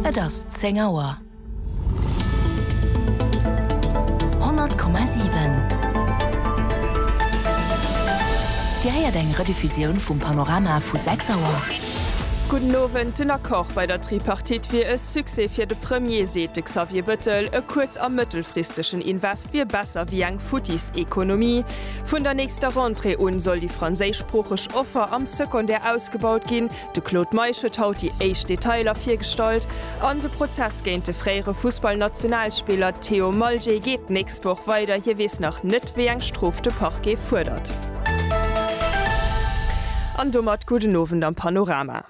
Et ass zéng Auer. 100,7 Dir héiert eng Rediffusioun vum Panorama vu 6 Auer. Gudden Owend, Den Accord bei der Tripartite wier e Succès fir de Premier, seet de Xavier Bëttel. E kuerz a mëttelfristegen Invest wier besser wéi eng futtis Ekonomie. Vun der nächster Rentrée un soll déi franséischsproocheg Offer am Secondaire ausgebaut ginn, De Claude Meisch huet haut déi éischt Detailer virgestallt an de Prozess géint de fréiere Fussballnationalspiller Theo Malje geet d'nächst Woch weider. Hie weess nach net, wéi eng Strof de Parquet fuerdert. An domat gudden Owend am Panorama.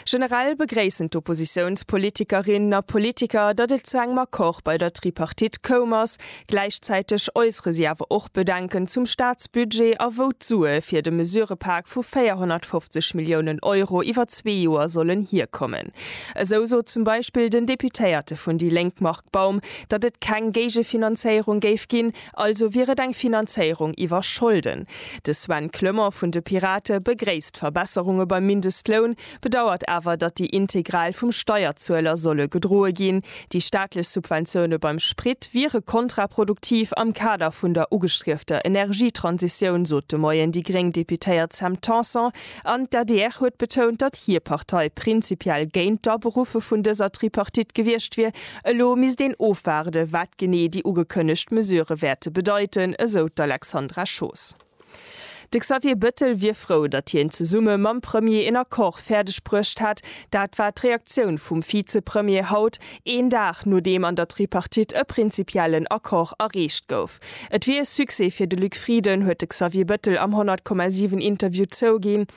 Generell begréissen d'Oppositiounspolitikerinnen a politiker, datt et zu engem Accord bei der Tripartite koum ass, Gläichzäiteg äussere si awer och Bedenken zum Staatsbudget a wou d'Sue fir de Mesurepak vu 450 Milliounen Euro iwwer zwee Joer sollen hierkommen. Esou sot zum Beispill den Deputéierte vun déi Lénk Marc Baum, datt et keng Géigefinanzéierung géif ginn, also wier et eng Finanzéierung iwwer Scholden. De Sven Clement vun de Pirate begréisst Verbesserunge beim Mindestloun, bedauert awer, datt déi integral vum Steierzueler solle gedroe ginn. Déi staatlech Subventioune beim Sprit wiere kontraproduktiv am Kader vun der ugestriefter Energietransitioun, sot de Moien déi gréng Deputéiert Sam Tanson. An d'ADR huet betount, datt hir Partei prinzipiell géint d'Aberuffe vun dëser Tripartite gewiescht wier. Elo misst een ofwaarde wat genee déi ugekënnegt Mesurë wäerte bedeiten, esou d'Alexandra Schoos. De Xavier Bettel wier frou, datt hien zesumme mam Premier een Accord fäerdeg bruecht hätt. Dat war d'Reaktioun vum Vizepremier haut, een Dag nodeem an der Tripartite e prinzipiellen Accord erreecht gouf. Et wier e Succès fir de Luc Frieden, huet de Xavier Bettel am 100,7 Interview zouginn.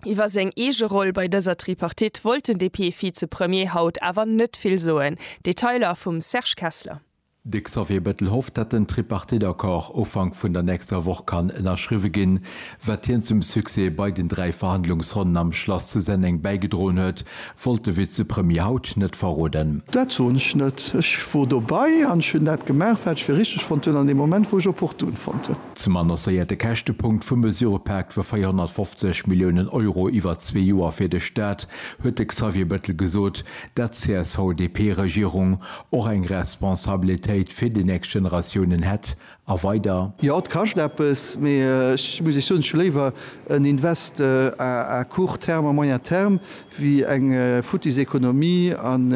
Iwwer seng eege Roll bei dëser Tripartite wollt den DP-Vizepremier haut awer net vill soen. Detailer vum Serge Kessler. De Xavier Bettel hofft, datt den Tripartite-Accord Ufank vun der nächster Woch kann ënnerschriwwe ginn, wat hien zum Succès bei den dräi Verhandlungsronnen am Schlass zu Senneng bäigedroen huet, wollt de Vizepremier haut net verroden. Dat soen ech net. Ech wor dobei an ech hunn dat gemaach, wat ech fir richteg fonnt hunn an deem Moment, wou ech opportun fonnt hunn. Zum annoncéierte Käschtepunkt vum Mesurëpak vu 450 Milliounen Euro iwwer zwee Joer fir de Staat huet de Xavier Bettel gesot, dat d'CSV-DP-Regierung och eng Responsabilitéit fir déi nächst Generatiounen hätt, a weider. Jo, et kascht eppes, mee ech muss Iech soen, ech hu léiwer en Invest à court terme, à moyen terme, wéi eng futtis Ekonomie an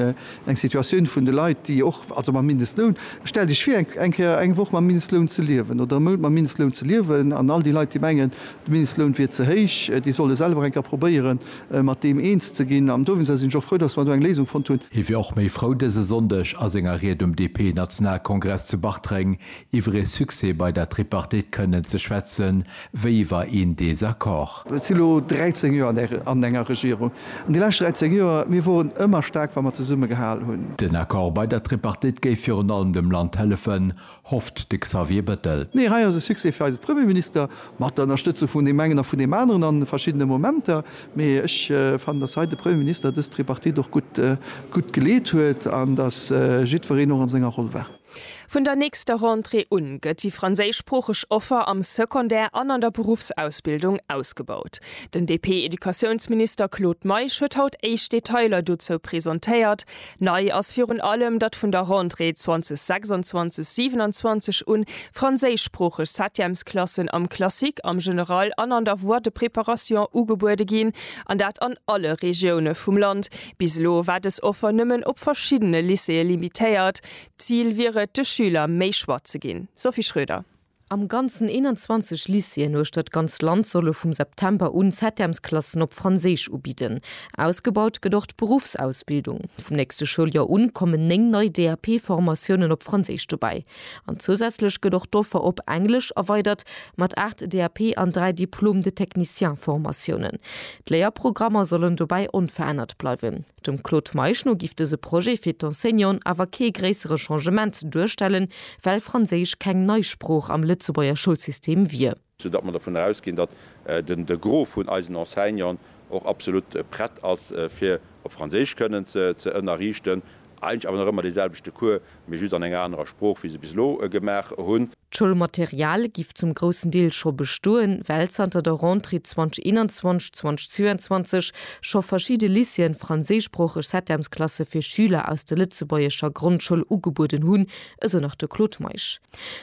eng Situatioun vun de Leit, déi och, also mam Mindestloun, stellt Iech vir, eng Kéier eng Woch mam Mindestloun ze liewen oder e Mount mam Mindestloun ze liewen, an all déi Leit, déi mengen, de Mindestloun wier ze héich, déi solle selwer eng Kéier probéieren, mat deem eens ze ginn an dowéinster sinn ech och frou, datt mer do eng Léisung fonnt hunn. Hie wier och méi frou dëse Sonndeg a senger Ried um DP-Nationalkongress zu Bartreng iwwer ee Succès bei der Tripartite kënnen ze schwätze wéi iwwer een Desaccord. Ech si lo 13 Joer an enger Regierung an déi lescht 13 Joer, mir woren ëmmer staark wa mer zesumme gehal hunn. Den Accord bei der Tripartite géif virun allem dem Land hëllefen, hofft de Xavier Bettel. Nee, hei ass e Succès fir eise Premierminister, mat der Ënnerstëtzung vun deem engen a vun deem aneren a verschiddene Momenter. Mee ech fannen, datt hei de Premierminister dës Tripartite och gutt geleet huet an datt jiddwereen och an senger Roll war. Vun der nächster Rentrée un gëtt déi franséischsproocheg Offer am Secondaire an an der Beruffsausbildung ausgebaut. Den DP-Educatiounsminister Claude Meisch huet haut éischt Detailer dozou presentéiert. Nei ass virun allem, datt vun der Rentrée 2026/27 un franséischsproocheg Septièmesklassen am Classique, am General an an der Voie de préparation ugebuede ginn, an dat an alle Regioune vum Land. Bis elo war dës Offer nëmmen op verschiddene Lycéeë limitéiert. D'Zil wier et, de Schüler méi Choix ze ginn. Sophie Schröder. Am Ganzen 21 Lycéeën uechter d'ganz Land solle vum September un Septemsklassen op Franséisch ubidden. Ausgebaut gëtt och d'Beruffsausbildung. Vum nächste Schouljoer un kommen 9 nei DAP-Formatiounen op Franséisch dobäi. An zousätzlech gëtt och d'Offer op Englesch erweidert mat 8 DAP an 3 Diplôme de technicien-Formatiounen. D'Léierprogrammer sollen dobäi onverännert bleiwen. Dem Claude Meisch no giff dëse Projet fir d'Enseignanten awer kee gréissere Changement duerstellen, well Franséisch keng nei Sprooch am Lëtzebuerger Schoulsystem wier. Sou datt mer dovun erausginn, datt de Gros vun eisen Enseignanten och absolut prett ass fir op Franséisch kënnen ze ënnerriichten, eigentlech awer nach ëmmer deeselwechte Cours, mee just an enger anerer Sprooch wéi se bis elo gemaach hunn. D'Schoulmaterial giff zum groussen Deel scho bestoen, well zanter der Rentrée 2021, 2022 scho verschidde Lycéeën franséischsproocheg Septemsklasse fir Schüler aus der lëtzebuergescher Grondschoul ugebueden hunn, esou nach de Claude Meisch.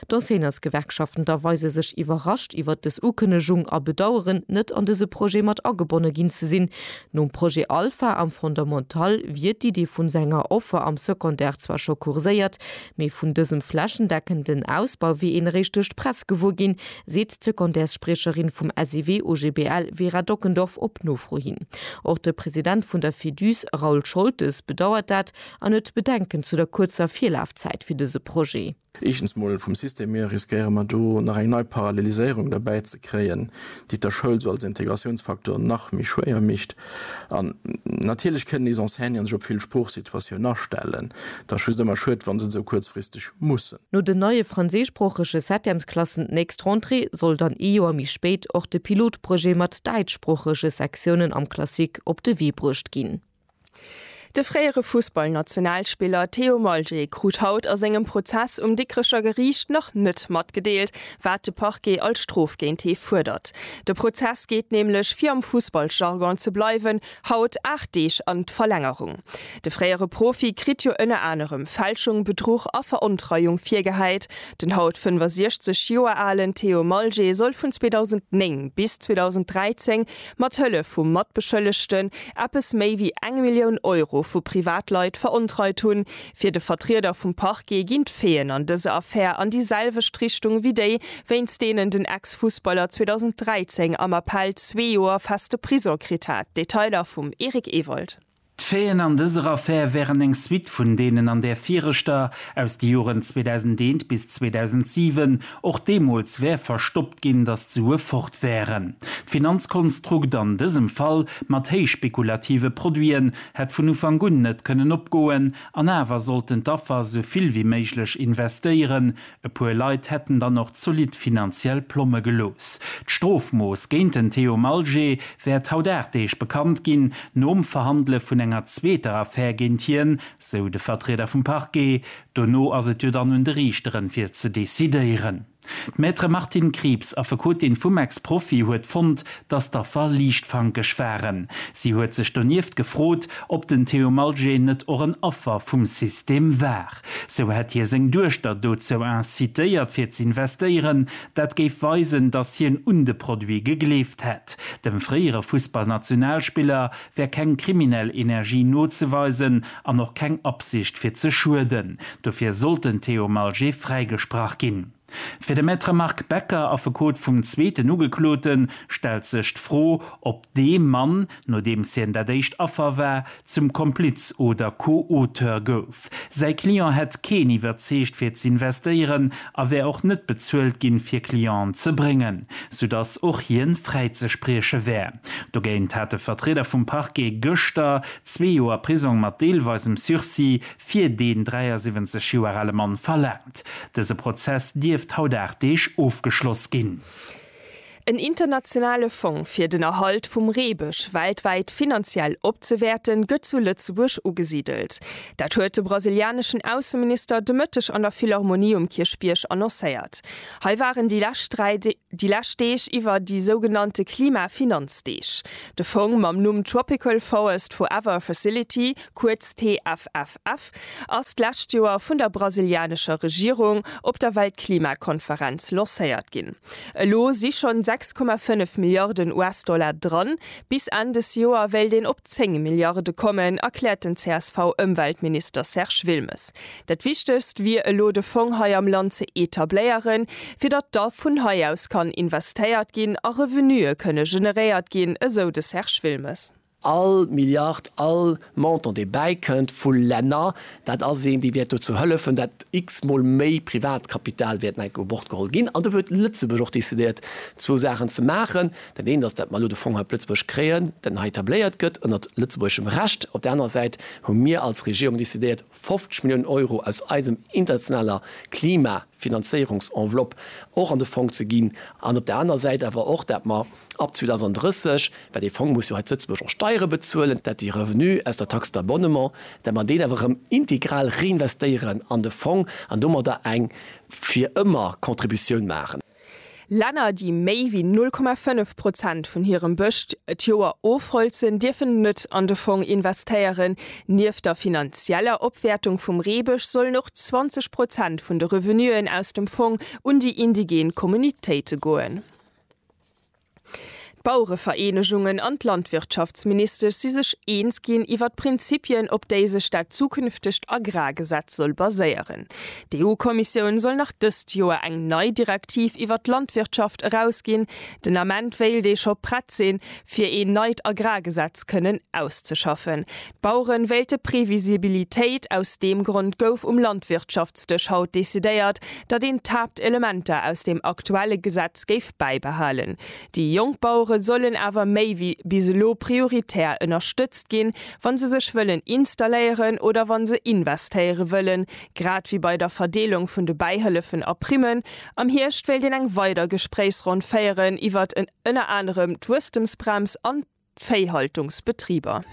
D'Enseignantsgewerkschaften da weise sech iwwerrascht iwwert dës Ukënnegung a bedaueren, net an dëse Projet mat agebonne ginn ze sinn. Nom Projet Alpha am Fondamental wier d'Idee vun senger Offer am Secondaire zwar scho kurséiert, Mee vun dësem flächendeckenden Ausbau wier een eréischt duerch d'Press gewuer ginn, seet d'Secondaires-Spriecherin vum SEW OGBL Vera Dockendorf op Nofro hin. Och de President vun der Feduse Raoul Scholtes bedauert dat an huet Bedenken zu der kuerzer Virlafzäit fir dëse Projet. Éischtens mol vum System hier riskéiere mer do nach eng nei Paralleliséierung derbäi ze kréien, déi et der Schoul sou als Integratiounsfaktor nach méi schwéier mécht. An natierlech kënnen nees Enseignanten sech op vill Sproochsituatiounen astellen. Et ass just ëmmer schued, wa se et esou kuerzfristeg mussen. No den neie franséischsproochege Septemsklassen d'nächst Rentrée soll dann ee Joer méi spéit och de Pilotprojet mat däitschsproochege Sektiounen am Classique op de Wee bruecht ginn. De fréiere Fussballnationalspiller Theo Maljé krut haut a sengem Prozess um Dikrecher Geriicht nach net matgedeelt, wat de Parquet als Strof géint hie fuerdert. De Prozess geet nämlech, fir am Fussballjargon ze bleiwen, haut 8 Deeg an d'Verlängerung. De fréiere Profi kritt jo ënner anerem Fälschung, Bedruch a Verontreiung virgehäit. Den haut 65 Joer alen Theo Maljé soll vun 2009 bis 2013 Mat Hëllef vu Matbeschëllegten eppes méi wéi eng Millioun Euro vu Privatleit verontreit hunn. Fir de Vertrieder vum Parquet ginn d'Faiten an dëser Affär an déi selwecht Richtung wéi déi, wéinst deenen den Ex-Fussballer 2013 am Appell zwee Joer feste Prison kritt hat. Detailer vum Eric Ewald. D'Faiten an dëser Affär wären eng Suite vun deenen an där viregter, aus de Joren 2001 bis 2007. Och deemools wär verstoppt ginn, datt d'Sue fort wären. D'Finanzkonstrukt an dësem Fall, mat héichspekulative Produiten, hätt vun Ufank un net kënnen opgoen. An awer sollten d'Affer esou vill wéi méiglech investéieren, E puer Leit hätten dann och zolidd finanziell Plomme gelooss. D'Strofmooss géint den Theo Malgé wäert haut 8 Deeg bekannt ginn, nom Verhandele vun enger zweeter Affär géint hien, sou de Vertrieder vum Parquet. Dono ass et jo dann un de Riichteren, fir ze decidéieren. D'Maître Martine Krieps, Affekotin vum Ex-Profi, huet fonnt, datt d'Affer liichtfankeg waren. Si huet sech donieft gefrot, ob den Theo Malgé net och en Affer vum System war. Sou hätt hie seng Duechter dozou incitéiert fir z'investéieren. Dat géif weisen, datt hien un de Produit gegleeft hätt. Dem fréiere Fussballnationalspiller wär keng kriminell Energie nozeweisen an och keng Absicht fir ze schueden. Dofir sollt den Theo Malger fräigesprach ginn. Fir de Maître Marc Becker, Affekot vum zweeten Ugekloten, stellt sech d'Fro, ob dee Mann, nodeems hien dat éischt Affer war, zum Kompliz oder Co-Auteur gouf. Säi Client hätt keen iwwerzeegt fir z'investéieren a wär och net bezuelt ginn, fir Clienten ze bréngen, soudass och hien fräizesprieche wär. Dogéint hat de Vertrieder vum Parquet gëschter zwee Joer Prisong mat deelweisem Sursis fir deen 73 Joer ale Mann verlaangt. Dëse Prozess dierft haut 8 Deeg ofgeschloss ginn. En internationale Fong fir den Erhalt vum Reebësch weltwäit finanziell opzewäerten, gëtt zu Lëtzebuerg ugesidelt. Dat huet de brasilianeschen Ausseminister de Mëtteg an der Philharmonie um Kierchbierg annoncéiert. Hei waren déi lescht 3 Déi lescht Deeg iwwer déi sougenannte Klimafinanzdeeg. De Fong mam Numm Tropical Forest Forever Facility, kuerz TFFF, ass d'lescht Joer vun der brasilianescher Regierung op der Weltklimakonferenz lancéiert ginn. Elo si schonn 6,5 Milliarden US-Dollar dran. Bis Enn des Joer wéilt een op 10 Milliarde kommen, erkläert den CSV-Ëmweltminister Serge Wilmes. Dat Wichtegst wier elo de Fong hei am Land ze etabléieren, fir datt da vun hei aus kann investéiert ginn a Revenuë kënne generéiert ginn, esou de Serge Wilmes. All Milliard, all Montant dee bäikënnt vu Länner, dat ass een, dee wäert dozou hëllefen, datt x-mol méi Privatkapital wäert enk u Bord geholl ginn. An do huet Lëtzebuerg och decidéiert zwou Saachen ze maachen. Dat eent ass, datt mer elo de Fong hei op Lëtzebuerg kréien, datt en hei etabléiert gëtt ënnert lëtzebuergeschem Recht. Op där anerer Säit hu mir als Regierung decidéiert, 50 Milliounen Euro aus eisem internationaler Klimafinanzéierungsenveloppe och an de Fong ze ginn an op der aner Säit awer och, dat mer ab 2030, well dee Fong muss jo hei zu Lëtzebuerg och Steiere bezuelen, dat de Revenu aus der Taxe d'abonnement, dat mer deen awer erëm integral reinvestéieren an de Fong an domadder eng fir ëmmer Contributioun maachen. Länner, déi méi wéi 0,5 Prozent vun hirem Bëscht et Joer ofholzen, dierfen net an de Fong investéieren. Nieft der finanzieller Opwäertung vum Reebësch sollen och 20 Prozent vun de Revenuen aus dem Fong un déi indigen Communautéite goen. D'Bauerevereenegungen an d'Landwirtschaftsministesch si sech eens ginn iwwer d'Prinzipien, op déi sech dat zukünftegt Agrargesetz soll baséieren. D'EU-Kommissioun soll nach dëst Joer eng nei Direktiv iwwer d'Landwirtschaft erausginn. Den Ament wéilt ee scho prett sinn, fir een neit Agrargesetz kënnen auszeschaffen. D'Baueren wéilte Previsibilitéit. Aus deem Grond gouf um Landwirtschaftsdësch haut decidéiert, datt een d'Haaptelementer aus dem aktuelle Gesetz géif bäibehalen. Déi jonk Bauere sollen awer méi wéi bis elo prioritär ënnerstëtzt ginn, wa se sech wëllen installéieren oder wa se investéiere wëllen, grad wéi bei der Verdeelung vun de Bäihëllefen a Primmen. Am Hierscht wéilt een eng weider Gespréichsronn féieren iwwert ënner anerem d'Wuesstemsbrems an. d'Véihaltungsbetriber.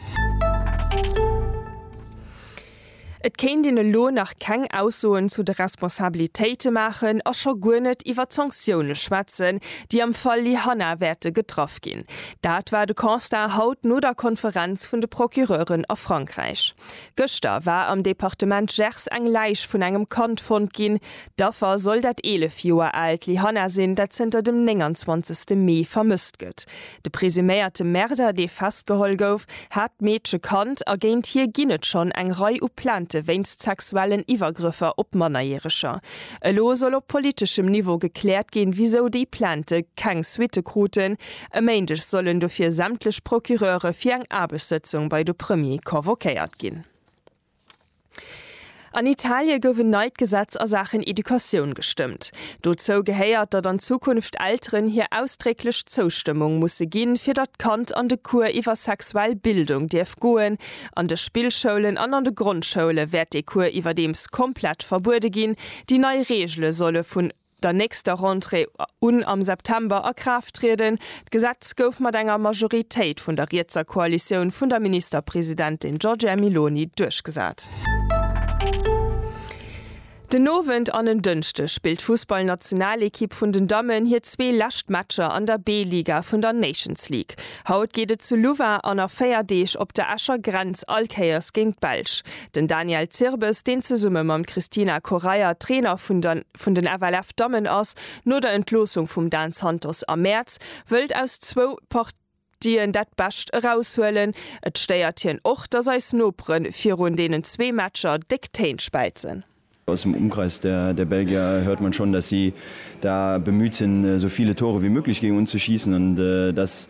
Et kéint een elo nach keng Aussoen zu de Responsabilitéite maachen a scho guer net iwwer d'Sanktioune schwätzen, déi am Fall Lyhanna wäerte getraff ginn. Dat war de Constat haut no der Konferenz vun de Procureuren a Frankräich. Gëschter war am Departement Gers eng Läich vun engem Kand fonnt ginn. D'Affer soll dat 11 Joer aalt Lyhanna sinn, dat zënter dem 29 Mee vermësst gëtt. De presuméierte Märder, dee festgeholl gouf, hat d'Meedche kannt a géint hie ginn et schonn eng Rei u Plainte wéinst sexuellen Iwwergrëffer op Mannerjäreger. Elo soll op politeschem Niveau gekläert ginn, wisou déi Plainte keng Suitte kruten. E Méindeg sollen dofir sämtlech Procureure fir eng Aarbechtssëtzung bei de Premier convoquéiert ginn. An Italie gouf en neit Gesetz a Saachen Educatioun gestëmmt. Dozou gehéiert, datt an Zukunft Elteren hir ausdrécklech Zoustëmmung musse ginn, fir datt d'Kand an de Cours iwwer sexuell Bildung dierf goen. An de Spillschoulen an an de Grondschoule wäert dee Cours iwwerdeems komplett verbuede ginn. Déi nei Reegele solle vun. der nächster Rentrée un am September a Kraaft trieden. D'Gesetz gouf mat enger Majoritéit vun der rietser Koalitioun vun der Ministerpresidentin Giorgia Meloni duerchgesat. Den Owend an en Dënschde spillt d'Fussballnationalekipp vun den Dammen hir zwee lescht Matcher an der B-Liga vun der Nations League. Haut geet et zu Louvain an a 4 Deeg op der Escher Grenz all Kéiers géint d'Belsch. Den Daniel Zirbes, deen zesumme mam Christina Correia Trainer vun der. vun den FLF Dammen ass no der Entloossung vum Dan Santos am Mäerz, wëllt aus zwou Partien dat Bescht eraushuelen. Et stéiert hien och, datt eis Nopere virun deenen zwee Matcher déck Téin späizen. Aus dem Umkreis der Belgier hört man schon, datt si da bemüht sinn, sou viele Tore wie möglich géingen unzuschießen an datt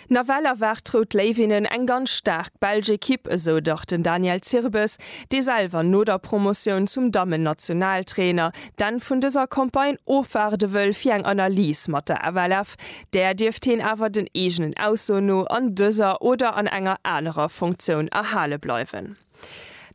Nawell erwaart d'Rout Léiwinnen eng ganz staark belsch Ekipp, esou dach den Daniel Zirbes, dee selwer no der Promotioun zum Dammen-Nationaltrainer d'Enn vun dëser Campagne ofwaarde wëll fir eng Analys mat der FLF. Där dierft heen awer den eegenen Aussoen no an dëser oder an enger anerer Funktioun erhale bleiwen.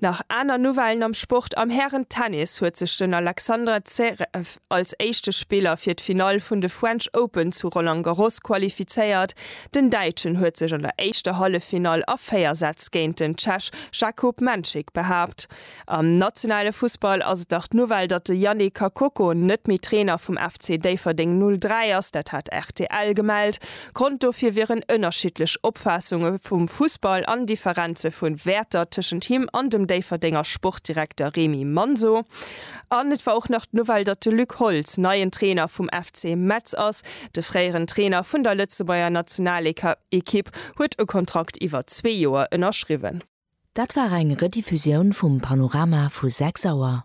Nach aner Nouvellen am Sport, Am Hären-Tennis huet sech den Alexander Zverev als éischte Spiller fir d'Finall vun de French Open zu Roland Garros qualifizéiert. Den Däitschen huet sech an der éischter Halleffinall a 4 Sätz géint den Tschech Jakub Menchik behaapt. Am nationale Fussball ass et nach d'Nouvelle, datt de Yannick Kakoko net méi Trainer vum FC Déifferdeng 03 ass. Dat hat rtl gemellt. Grond dofir wieren ënnerschiddlech Opfaassunge vum Fussball an Differenze vu Wäerter tëschent him an dem Déifferdenger Sportdirekter Remy Manso. An et war och nach d'Nouvelle, datt de Luc Holtz neien Trainer vum FC Metz ass. De fréieren Trainer vun der Lëtzebuerger Nationalekipp huet e Kontrakt iwwer zwee Joer ënnerschriwwen. Dat war eng Rediffusioun vum Panorama vu 6 Auer.